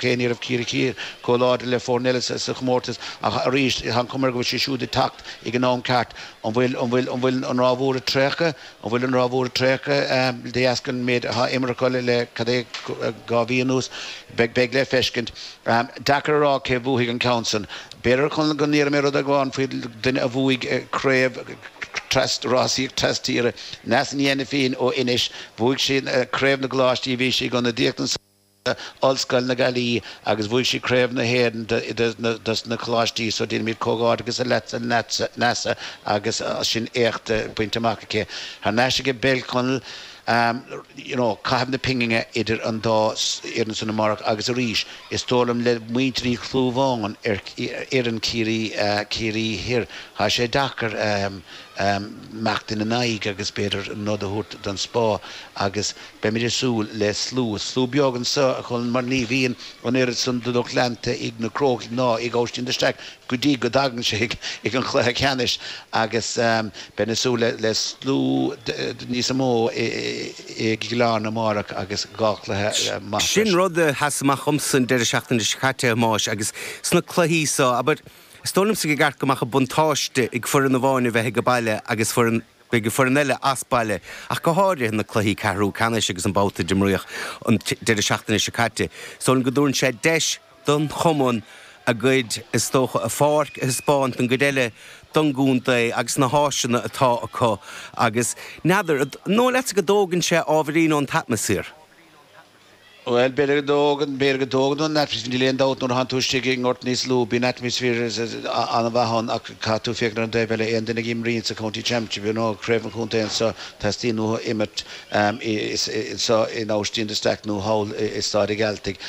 Cé ní raibh Ciarraí Thiar chomh láidir le foirne eile sa chomórtas ach arís tá an chuma ar go bhfuil siad siúd ag teacht ag an am ceart. An bhfuil an bhfuil an bhfuil an ráth mhór ag traochadh? An bhfuil an ráth mhór ag traochadh de dheasca an méid atá imeartha acu le cad é dhá mhí anuas? Beidh beidh le feiscint. Deacair a rá cé bhuafaidh an ceann san. B'fhéidir, a Chonaill, go ndéarfaidh mé rud amháin faoi duine a bhuaigh craobh tras rásaíocht tras tíre. Neasa Ní Ainifín ó Inis. Bhuaigh sí craobh na gcoláistí. Bhí sí ag ionadaíocht don Ollscoil na Gaillimhe agus bhuaigh sí Craobh na hÉireann dos na coláistí so déanaimid comhghairdeachas le Neasa agus sin éacht bainte amach aici thar n-ais aige peil, a Chonaill, you know caitheamh na pingine idir an dá fhoireann san amárach agus arís is dóigh liom le muintir Uí Chlúmháin ar fhoireann Chiarraí Chiarraí Thoir tá sé deacair imeacht ina n-aghaidh agus b'fhéidir an nod a thabhairt don Spá agus Beimid ag súil le slua, slua beag anso, a Chonaill, mar ní bhíonn an oiread san de lucht leanta ag na Crócaigh ná ag Óistín de Staic go dtí go dtagann sé ag an chluiche ceannais agus beinn ag súil le slua níosa mó i gCill Airne amárach agus dhá chluiche maith. Sin rud a sheas amach dhomsa an deireadh seachtaine seo caite, a Thomáis, agus sna cluichí seo, abair, is dóigh liomsa gur ceart go mbeadh an buntáiste ag foireann amháin a bheith aige baile agus foireann. Beidh foireann eile as baile ach go háirithe na cluichí ceathrú ceannais agus an babhta d'imríodh an deireadh seachtaine seo caite. Samhlaím go dtabharann sé deis don chumann a gcuid is dócha a pháirc a thaispeáint don gcuid eile don gcontae agus na háiseanna atá acu agus n'fheadar, an dóigh leatsa go dtógann sé ábhairín ón t-atmaisféar? Bhuel, b'fhéidir go dtógann, b'fhéidir go dtógann ón atmaisféar, níl aon dabht nuair a théann tú istigh i ngort níos lú, bíonn atmaisféar an-mhaith ann ach caithfidh tú féachaint ar an dtaobh eile, aon duine a imríonn sa County Championship, you know, Craobh an Chontae anseo, teastaíonn uathu imirt anseo in Austin de Staic nó thall i Staid a' Ghearaltaigh.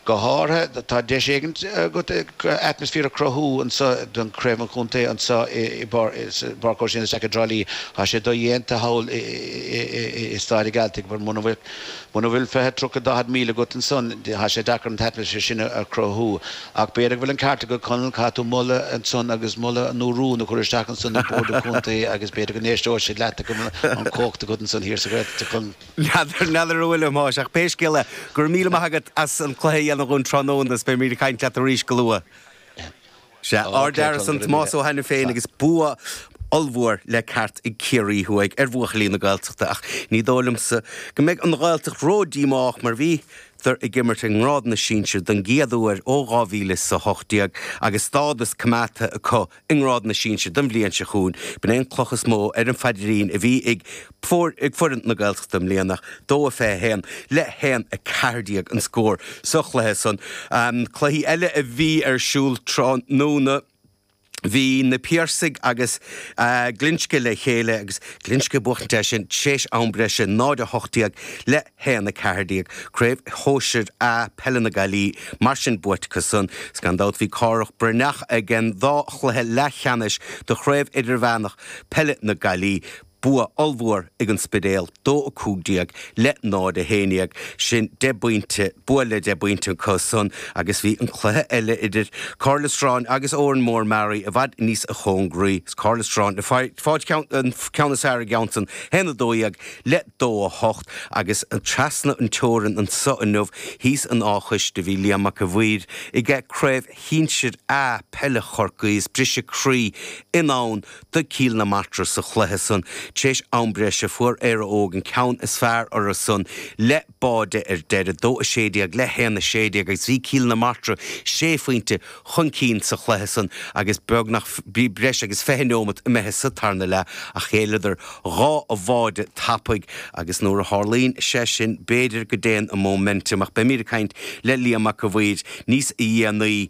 Go háirithe, tá deis éigin agat atmaisféar a chruthú anseo don Craobh an Chontae anseo i bPáirc Óistín de Staic i dTrá Lí, tá sé dodhéanta thall i Staid a' Ghearaltaigh, mura bhfuil. Muna bhfuil fiche, tríocha, daichead míle agat ansan, tá sé deacair an t-atmaisféar sin a chruthú. Ach b'fhéidir go bhfuil an ceart agat, Conall, caithfidh tú moladh ansan agus moladh nó rún a chur isteach ansan ag Bord an Chontae agus b'fhéidir go n-éisteoidh siad leat agus an chumhacht agat ansan thiar sa Ghaeltacht, a Chonaill. N'fheadar an bhfuil, a Thomáis, ach pé scéal é, go raibh míle maith agat as an cluiche a dhéanamh dhúinn tráthnóna is beimid ag caint leat arís go luath. Sea, ardfhear ansan Tomás Ó hAiniféin agus bua ollmhór le ceart ag Ciarraí Thuaidh ar bhuachaillí na Gaeltachta ach ní dóigh liomsa go mbeidh an Ghaeltacht ródhíomách mar bhíodar ag imirt i ngrád na sinsear don gcéad uair ó 2018 agus stádas coimeádta acu i ngrád na sinsear don bhliain seo chugainn. B'in é an cloch is mó ar an phaidrín a bhí ag Bua ag foireann na Gaeltachta i mbliana, 2-21 le 1-14 an scór sa chluiche san. Cluichí eile a bhí ar siúl tráthnóna, bhí Na Piarsaigh agus Glinsce le chéile agus Glinsce ag buachtaint ansan tar éis am breise, 0-18 le 1-14. Craobh Shóisir A peile na Gaillimhe mar sin buaite acu san. Gan dabht bhí Cárthach Breathnach ag an dá chluiche leathcheannais do Chraobh Idirmheánach Peile na Gaillimhe. Bua ollmhór ag An Spidéal, 2-15 le 0-11. Sin deich bpointe, bua le deich bpointe acu san agus bhí an cluiche eile idir Cathair Loistreáin agus Órán Mór Mearaí i bhfad níos chóngaraí. Cathair Loistreáin ag fáilt an ceann is fearr sa cheann san 1-12 le 2-8 agus trasna an teorann anso inniu thíos in Áth an Chóiste bhí Liam Mac an Mhaoir ag Craobh Shinsir A peile Chorcaí is briseadh croí i ndán do Cill na Martra sa chluiche san tar éis am breise fuair Éire Óg an ceann is fearr orthu san le báide ar deireadh, 2-16 le 1-16 agus bhí Cill na Martra sé phointe chun cinn sa chluiche san agus beagnach bhí breis agus 20 neomat imithe sa tarna leath ach ghéilleadar dhá bháide tapaidh agus nuair a tharlaíonn sé sin b'fhéidir go dtéann an momentum ach beimíd ag caint le Liam Mac an Mhaoir níos dhéanaí